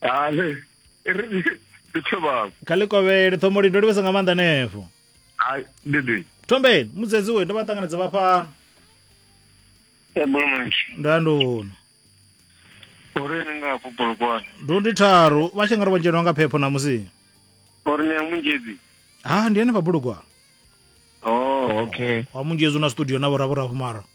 ale ndi thobako kha ḽi kovhele thomoli ndo livhesa nga maanḓa nefo ai dede thombeni mudzedzi we ndo vha ṱanganedza vha fhano ebolomanshi ndo ya ndono uri ni nga hafho bolokwane ndo ndi tharu vha tshi nga ri vho dzhenwa nga phepho ṋamusi uri ni ya munzhedzi ha ndi ene vha bulugwana oh okay wa munzhedzi u na studio na vhoravhoravho mara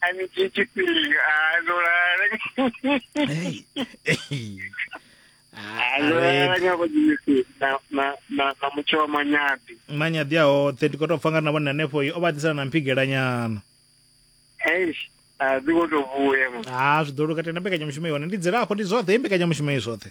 a ni dzhie tshifhinga a ndo lala Hey. Hey. Ah, a ndo lala Arebe. nyako dzimisi na na na na mutsho wa manyabi manyaḓi a hoṱhe ndi khou tou pfa nga na vhone hanefho o vha ḓisana na mphigelanyana eish a dzi kho to vhuya mama ha zwi ḓo luka tenda mbekanyamushumo i hone ndi dzilafho ndi zwoṱhe i mbekanyamushumo i zwoṱhe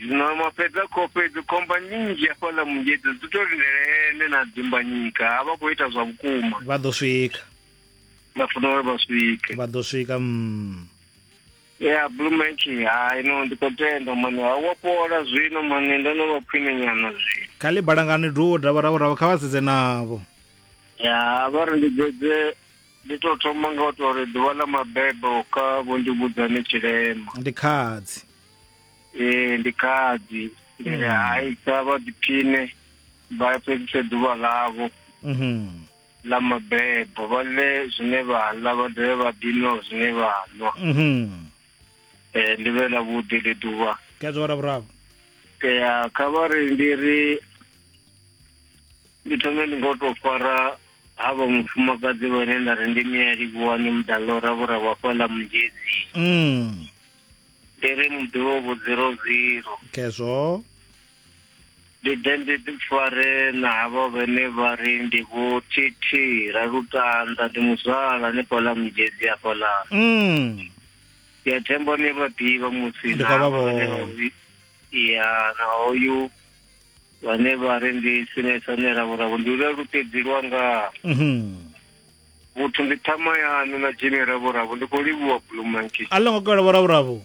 Zwino ma fhedza kho fhedzi khomba nyinzhi hafhaḽa mungedzi dzi to lindele ene na dzimbanyika a vha khou ita zwa vhukuma vha ḓo swika vha funa uri vha swike vha ḓo swika mm. ya blue maki hai no ndi khou tenda mani ha wa fhola zwino mani ndo no vha khwine nyana zwino kha ḽi balangani duwo davha ravo ravo kha vha sedze navho ya vha ri ndi dzedze ndi to thoma nga u to ri ḓuvha ḽa mabebo kha vho ndi vhudzane tshilema ndi khadzi Eh, ndi khadi ndi ri hai kha vha ḓiphine vha fhedzise ḓuvha ḽavho Mhm. ḽa mabebo vha ḽe zwine vha ḽa vha dovhe vha ḓinwa zwine vha nwa Mhm. Eh, ndi vhe ḽa vhuḓi ḽi ḓuvha Khezwo wa Ravhuraru. ya kha vha ri ndi ri ndi thome ndi ngo tou fara ha vha mufumakadzi vhane nda ri ndi mialivhuwani mudalora vhura wa fhaḽa mungezi Mm. ndi ri muḓivho zero zero khezwo ndi ḓe ndi ḓi fare na havho vhene vha ri ndi vho tt ra lutanda ndi muzwala ni fhaḽa mujezi afhaḽa mm. ya thembo ni vha ḓivha musi na ya na hoyu vhane vha ri ndi sinesane ravhuravo ndi lwa luṱedzi lwanga mm -hmm. vhuthu ndi ṱhama yaṋu na dzhini ravhuravhu ndi khou livhuwa bulumanki a ḽo ngo kola vhoravhuravhu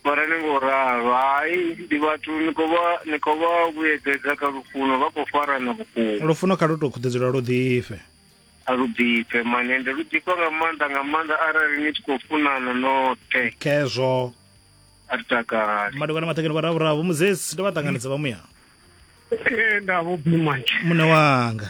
mara ni ngo ralo hai ndi vhathu ni khou vha ni khou vha vhuyedzedza kha lufuno vha khou farana vhukuma lufuno kha lu tou khuḓedzula lu ḓifhe a lu ḓifhe mane ndi lu ḓifha nga maanḓa nga maanḓa arali ni tshi khou funana noṱhe khezwo a ri takali madokwana maṱhekeni vhoravhuravhu muzesi ndo vha ṱanganedza vha muya ee nda vho bulumanki muṋe wanga